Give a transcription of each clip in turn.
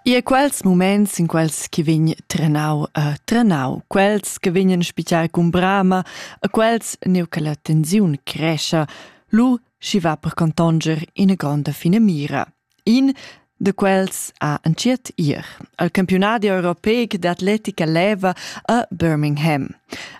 Ie quels muments in quels chi vegn trenau e trenau, quels che vegnan spitar cun brama, e quels neu che la tensiun crescha, lu schi va per contonger ina gronda finamira. In de quels ha entschiet ir al campionadi europeic d'atletica leva a Birmingham.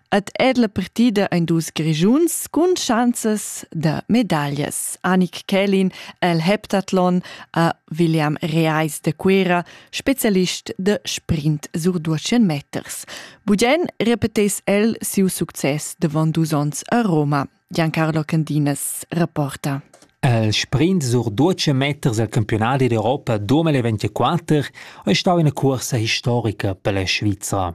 Ed è la partida ein dus Grischuns cun schanzas da medaglias. Annik Kelin el heptathlon a William Reis de Quera, specialist de sprint sur 200 meters. Bugen repetes el siu success davon dus onns a Roma. Giancarlo Candinas rapporta. Il sprint sur 12 meters al campionat d'Europa 2024 è stata una cursa historica per la Svizzera.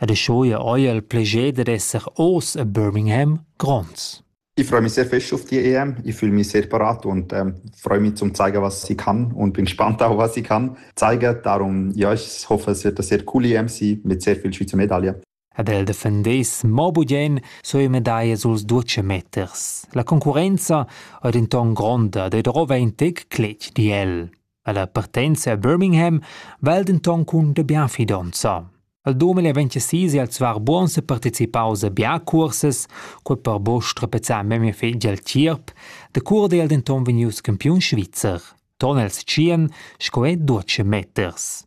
ed eschia eir il plascher dad esser hoz a Birmingham gronds. Ich freue mich sehr fest auf die EM. Ich fühle mich sehr parat und ähm, freue mich zum zeigen, was ich kann und bin gespannt auch, was ich kann zeigen. Darum, ja, ich hoffe, es wird eine sehr coole EM sein mit sehr vielen Schweizer Medaillen. Ed el defendess mo bugen sue medaglie suls ducemeters. La concurrenza è denton gronda ed rova in tec cletg di el. Ella partenza a Birmingham val denton cun de bien fidonza. Al 2026 è el zwar buons e participaus a bia cursas, quei per bosch trapezzar memia fetg al tgierp, de cur è el denton vegnius campiun svizzer. Ton els tschien, sco è 12 meters.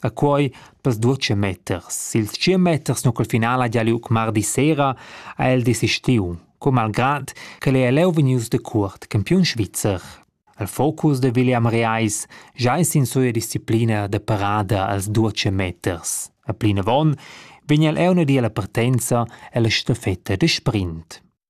A quei per sdutscha meters. Ils tschient meters nu col final ha gia liug mardi sera, ha el desistiu, co malgrad ch'el ei leu vegnius decuort campiun svizzer. El focus de William Reis già es in suia disciplina de parada als duce meters. A plinavon vegn el euna di alla partenza ella stafetta de sprint.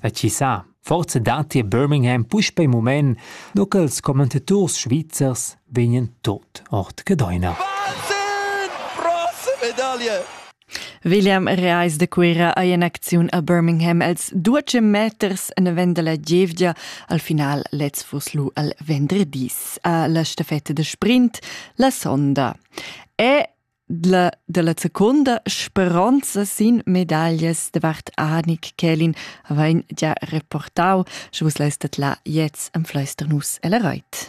E chi sa, forsa datti a Birmingham puspei mument, nu ch'els commentaturs svizzers vegnan tot ord Gedeuna. William Reis de Cuira ei en acziun a Birmingham els duece meters en vend dalla gievgia al final lez fuss lu al vendredis a la stafetta de sprint la sonda. E La, dalla seconda speronza sin medaglias davart Anik Kelin vain gia reportau, sche vus leistet la jetzt am Fleisternus elle Reit.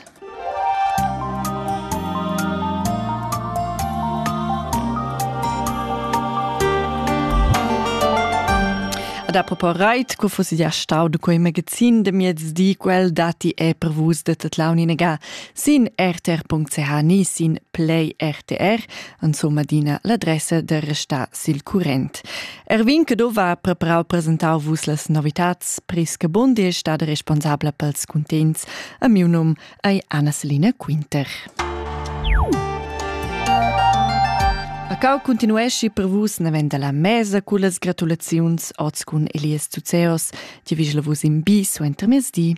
Ad apropos Reit, cu fus ja stau de quei magazin de miez di quel dati e per vus de Tatlauninaga Sin rtr.ch ni sin Play RTR insomma adina l'adressa da restar sil current. Erwin che dova preparau presentau vus las novitats. Priska Bundi è stata responsabla pels cuntents. A miu num è Anna Selina Quinter. A cau continuesci per vus navenda la mesa cu las gratulaziuns oz cun Elias Zuzeos, ti vigela vus in bi suenter mezdi.